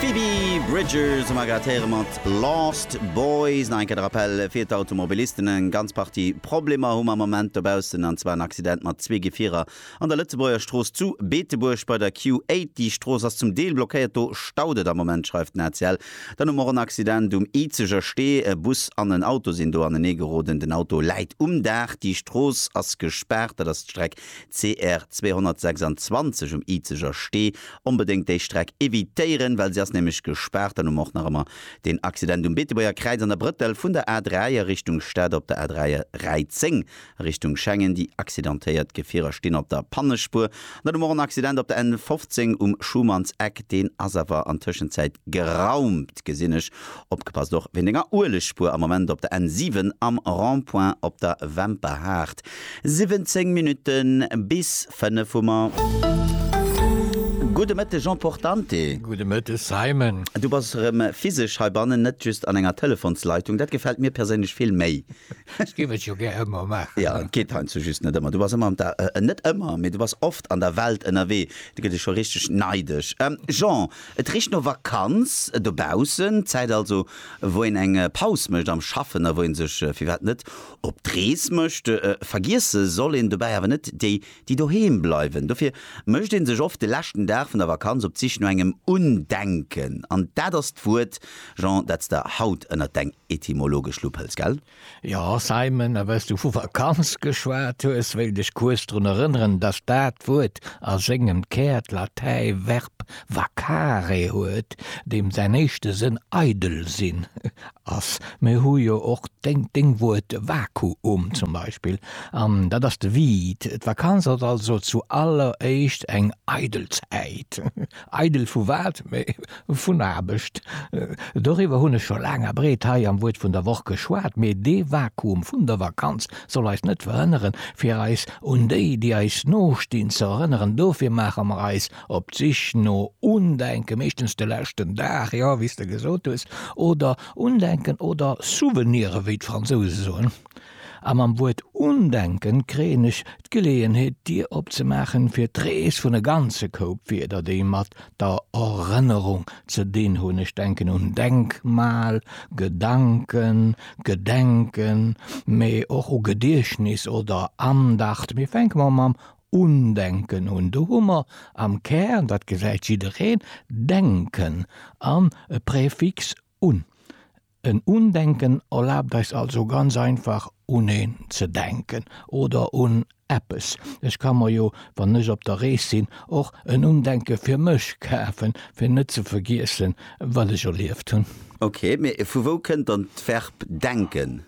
Phoebe Bridgers hu mer grad héiere mat Lost Boys. Nach eng Kéier de Rappell fir d'Automobilisten, Eng ganz Partie Problemer hu mer am Moment dobaussen, an zwar en Accident mat zwee Gefierer an der Lëtzebuerger Strooss zu Beetebuerg bei der Q8. Déi Strooss ass zum Deel blockéiert, do staut et am Moment, schreift den ACL. Dann hu mer och en Accident um Izeger Stee, e Bus an en Auto sinn do aneneegeroden. Den Auto läit um Daach. Déi Strooss ass gespaart, dat ass d'Streck CR 226 um Izeger Stee, onbedéngt déi Streck evitéieren, well se ass nämlech gespaart. Dann hu mer och nach ëmmer deen Accident um Beetebuerger Kräiz an der Brëttel vun der A3 a Richtung Stad op der A3 a Räi 10 a Richtung Schengen. Déi accidentéiert Gefierer stinn op der Pannespuer. An dann hu mer och en Accident op der N 15 um Schumannseck, deen ass awer an Tëschenzäit geraumt, gesinn ech. Opgepasst och wéint enger Uelegspur am Moment op der N 7 am Rond-point op der Wemperhaart. 17 Minutten bis 5 hu mer. Gudde Mëtteg Jean Portante. Gudde Mëtteg Simon. Du bass erëm physesch heibannen, net just an enger Telefonsleitung. Dat gefält mir perséinlech vill méi. Ech géif et jo gär ëmmer maachen. Ja, et geet heiansdo just net ëmmer. Du bass ëmmer an der, äh, net ëmmer, mee du bass oft an der Welt ënnerwee. Da gëtt ee scho richteg neidesch. Ähm, Jean, et richt no Vakanz dobaussen. D'Zäit also, wou een eng Paus mécht am Schaffen a wou ee sech, firwat net, op d'Rees mécht. Vergiesse soll een dobäi awer net déi, déi doheem bleiwen. Dofir mécht ee sech oft de leschten Dag vun der Vakanz op d'Sich no engem Undenken. An dat ass d'Wuert, Jean, dat s de haut ënnert deng etymologesch Lupp hëls, gell? Jo, Simon, a wéi's du vu Vakanz geschwat hues, wéilt ech kuerz drun erënneren, dass dat Wuert a sengem Kär d'Latäi Verb vacare huet, deem säin éischte Sënn eidel sinn. Ass. Mir hu jo och deng Wuert Vakuum zum Beispill, an dat ass de Vide. D'Vakanz ass also zu alleréischt eng eidel Zäit. Eidel vu wat? Vun Aarbecht. Doriwwer hunn ech scho laang a breet hei am Wuert vun der Woch geschwat. Mee dee Vakuum vun der Vakanz soll eis net verhënneren, fir eis un déi, déi eis nostinn, ze erënneren. Dofir maache mer eis Op d'Sich no Undenken, meeschtens de leschten Dag, jo, wéi s de gesot hues, oder Undenken oder Souvenire wéi d'Fransouse soen. A mam Wuert Undenken kréien ech d'Geleeënheet d'Dier opzemaachen fir d'Rees vun e ganze Koup Wierder déi mat der Erënnerung ze dinn hunn. Ech denken un Denkmal, Gedanken, Gedenken, mee och u Gediechtnis oder Andacht. Mee fänke mer mam Undenken hunn. Do hu mer am Kär, dat gesäit jiddereen, denken an e Präfix un. En Undenken erlaabt eis also ganz einfach un een ze denken oder un eppes. Ech ka mer jo, wann ech op der Rees sinn, och en Undenke fir mech kafen, fir net ze vergiessen, wat ech erlieft hunn. Ok, mee vu wou kënnt dann d'Verb denken?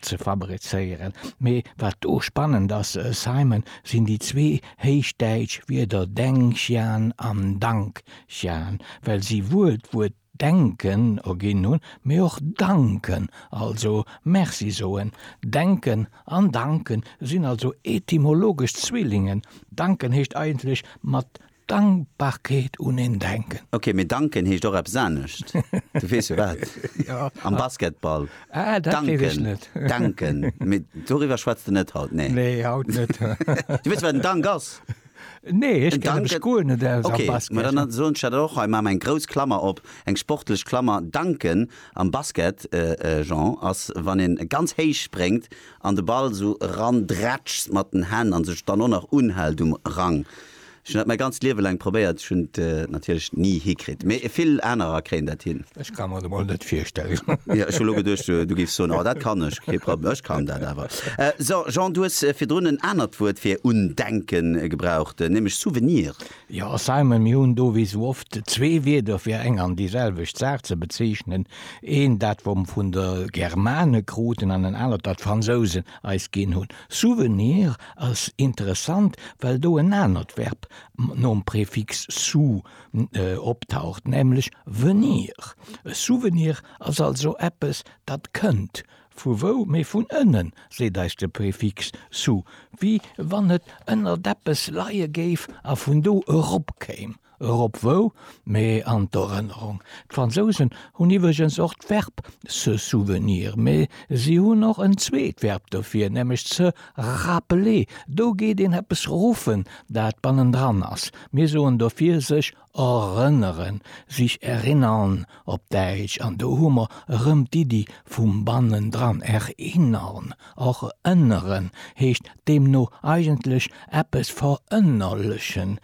ze fabrizéieren, mee wat do spannend ass, Simon, sinn déi zwee héichdäitsch Wierder Dengxian an Dangxian, well si wuel d'Wuert denken erginn hunn, mee och danken, also Merci soen. Denken an danken sinn also etymologesch Zwillingen, danken heescht eigentlech mat Dankbarkeet un een denken. Ok, mee danken heescht och eppes anescht. Du weess jo wat? Jo. Am Basketball. Ah, dat weess ech net. Danken, danken. Mee doriwwer schwätz de net haut, nee? Nee, haut net. Du weess wat en Dank ass? Nee, ech kennen mech guer net aus am Basket. Ok, ma dann soen ech dat och hei, maache mer eng grouss Klammer op, eng sportlech Klammer. Danken am Basket, Jean, ass wann een ganz héich spréngt an de Ball esou erandrätschst mat den Hänn an sech dann och nach unhält um Rang. Ech hunn dat mäi ganzt Liewe laang probéiert, ech hunn et natierlech ni hikritt, mee vill anerer kréien dat hin. Ech ka mer et emol net virstellen. Jo, ech hu lo geduecht, du géifs soen, oh, dat kann ech, kee Problem, ech kann dat awer. So, Jean, du hues virdrun en anert Wuert fir undenken gebraucht, nämlech Souvenir. Jo, Simon, mir hunn do wéi sou oft zwee Wierder fir eng an déi selwecht Saach ze bezeechnen, eent dat, wat mer vun de Germane kruten, an en anert, dat d'Fransousen eis ginn hunn. Souvenir ass interessant, well do en anert Verb nom Prefix sou optaucht, nämlech venir. E Souvenir ass also eppes, dat kënnt. Vu wou? Mee vun ënnen, seet eis de Prefix sou, wéi wann et ënnert eppes leie géif a vun do eropkéim. Erop wou, mee an d'Erënnerung. D'Fransousen hunn iwwregens och d'Verb se souvenir, mee si hunn och en zweet Verb dofir, nämlech se rappeler. Do geet een eppes ruffen, dat bannendran ass. Mir soen dofir sech erënneren, sich erinnern op Däitsch, an do hu mer erëm d'Iddi vum bannendran. Erinnern, erënneren, heescht deemno eigentlech eppes verënnerlechen.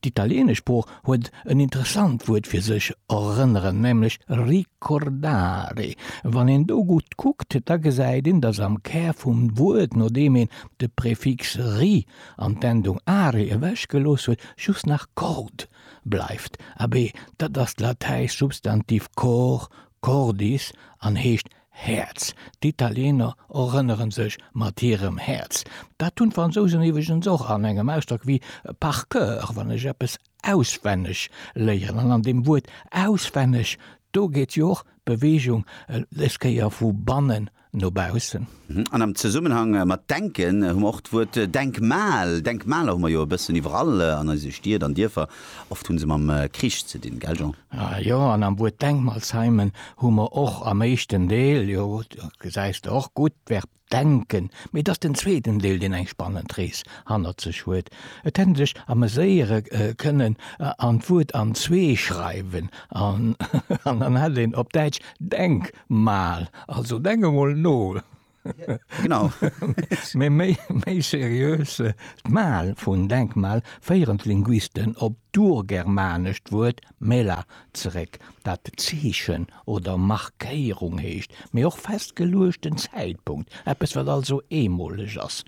D'italieenesch Sprooch huet en interessant Wuert fir sech erënneren, nämlech ricordare. Wann een do gutt kuckt, da gesäit een, datt am Kär vum Wuert, nodeem een de Prefix ri an d'Endung are ewechgelooss huet, just nach cord bleift. Abee, dat ass d'latäischt Substantiv cor, cordis, an heescht Häerz, D'Italiener erënnere sech mat hirem Häerz. Dat hunn d'Fransousen iwweregens och an engem Ausdrock wéi par cœur, wann ech eppes auswenneg léieren. An an deem Wuert auswenneg, do geet jo och d'Beweegung dës Kéier vu bannen no baussen. An am Zesummenhang mat denken hu mer och d'Wuert Denkmal. Denkmaler hu mer jo e bëssen iwwerall an eise Stied an Dierfer. Oft hunn se mam Krich ze dinn, gell Jean? Jo, an am Wuert Denkmalsheimen hu mer och am éischten Deel, jo, do gesäis de och gutt, d'Verb denken, mee et ass den zweeten Deel, deen eng spannend Rees hannert sech huet. Et hätt een sech ameséiere kënnen an d'Wuert an zwee schreiwen an dann hätt een op Däitsch Denkmal, also denk emol no. Genau. Mee méi seriös, d'Mal vun Denkmal féieren d'Linguisten op d'urgermanescht Wuert mela zeréck, dat Zeechen oder Markéierung heescht, mee och festgeluechten Zäitpunkt, eppes wat also eemoleg ass.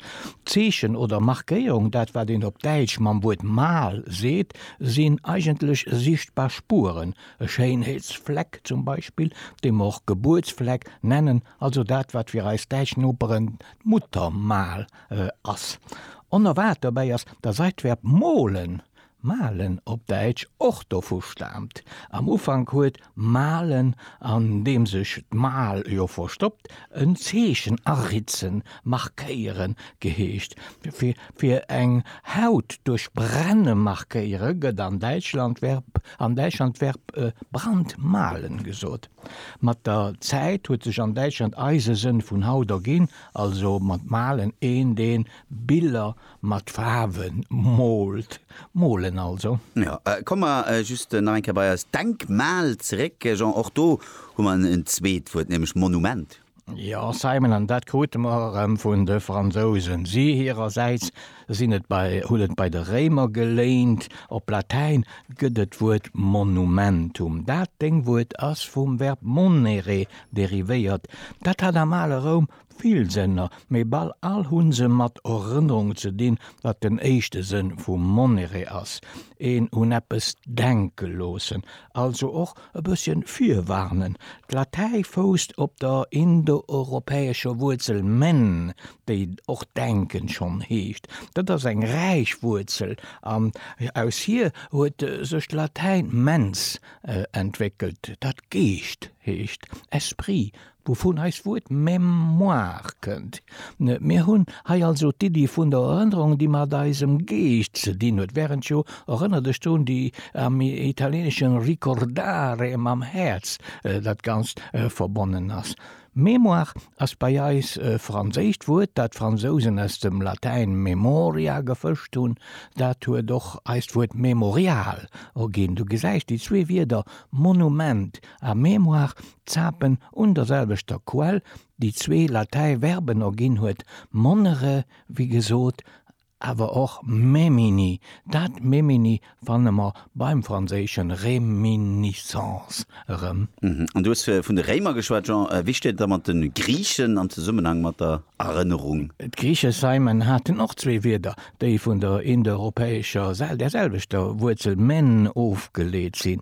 Zeechen oder Markéierung, dat wat een op Däitsch mam Wuert Mal seet, sinn eigentlech sichtbar Spueren, e Schéinheetsfleck zum Beispill, dee mer och Gebuertsfleck nennen, Also dat, wat fir eis däitsch Noperen d'Muttermal ass. Onerwaart dobäi ass, datt eist d'Verb molen, malen op Däitsch, och dovu staamt. Am Ufank huet malen, an deem sech d'mal jo verstoppt, en Zeechen aritzen, markéieren, geheescht. Fir eng Haut duerch brenne markéiere gëtt an Däitschland d'Verb brandmalen gesot. Mat der Zäit huet sech an Däitschland eise Sënn vun haut erginn, also mat malen, een deen Biller mat Faarwen moolt, molen also. Jo, komme mer just nach eng Kéier bei eist Denkmal zeréck, Jean, och do hu mer en zweet Wuert, nämlech Monument. Jo, Simon, an dat krute mer erëm vun de Fransousen. Si hirersäits sinn et bei, hunn et bei de Réimer geléint. Op Latäin gëtt et d'Wuert monumentum. Dat Deng Wuert ass vum Verb monere derivéiert. Dat hat am ale Roum vill Sënner, mee bal all hu se mat Erënnerung ze dinn, wat den éischte Sënn vu monere ass, een un eppes denke loossen. Also och E bësschen virwarnen, D'Latäi fousst op der indoeuropäescher Wuerzel men, déi och denken schonn heescht. Dat ass eng räich Wuerzel an aus hir huet sech d'Latäin mens entwéckelt, dat Geescht heescht, esprit, Wouvun eist Wuert Mémoire kënnt. Mir hunn hei also d'Iddi vun der Erënnerung, déi mat eisem Geescht ze dinn huet, wärend jo, erënner dech drun, déi am Italienesche ricordare mam Häerz dat Ganzt verbonnen ass. Mémoire ass bei eis e franséischt Wuert, dat d'Fransousen aus dem Latäin memoria gefëscht hunn. Dat huet och eist Wuert Memorial erginn. Du gesäis, déi zwee Wierder Monument A mémoire zapen un der selwechter Quell, déi zwee latäi Verben erginn huet, monnere wéi gesot, awer och memini. Dat memini fanne mer beim franséische réminiscence erëm. An du hues vun de Réimer geschwat, Jean. Wéi steet et da mat de Griichen am Zesummenhang mat der Erënnerung? D'Griiche seimen haten och zwee Wierder, déi vun der indoeuropäescher, der selwechter Wuerzel men ofgeleet sinn,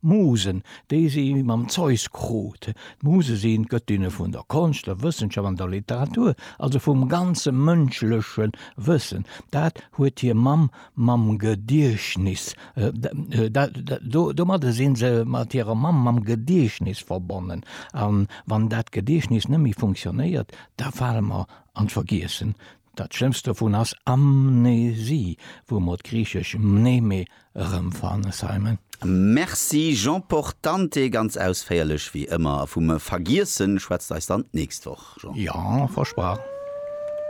Musen, déi si mam Zeus krut. D'Muse sinn d'Gëttinne vun der Konscht, der Wëssenschaft an der Literatur, also vum ganze mënschleche Wëssen. Dat huet hir Mamm mam Gediechtnis, domadde si se mat hirer Mamm mam Gediechtnis verbonnen. A wann dat Gediechtnis net méi funktionéiert, da fale mer an d'Vergiessen. Dat schlëmmst dovun ass Amnesie, wou mer d'griichesch mneme erëm fannen Simon. Merci Jean Portante, ganz ausféierlech wéi ëmmer, a vum Vergiessen schwätzt eis dann d'nächst Woch Jean. Jo, versprach.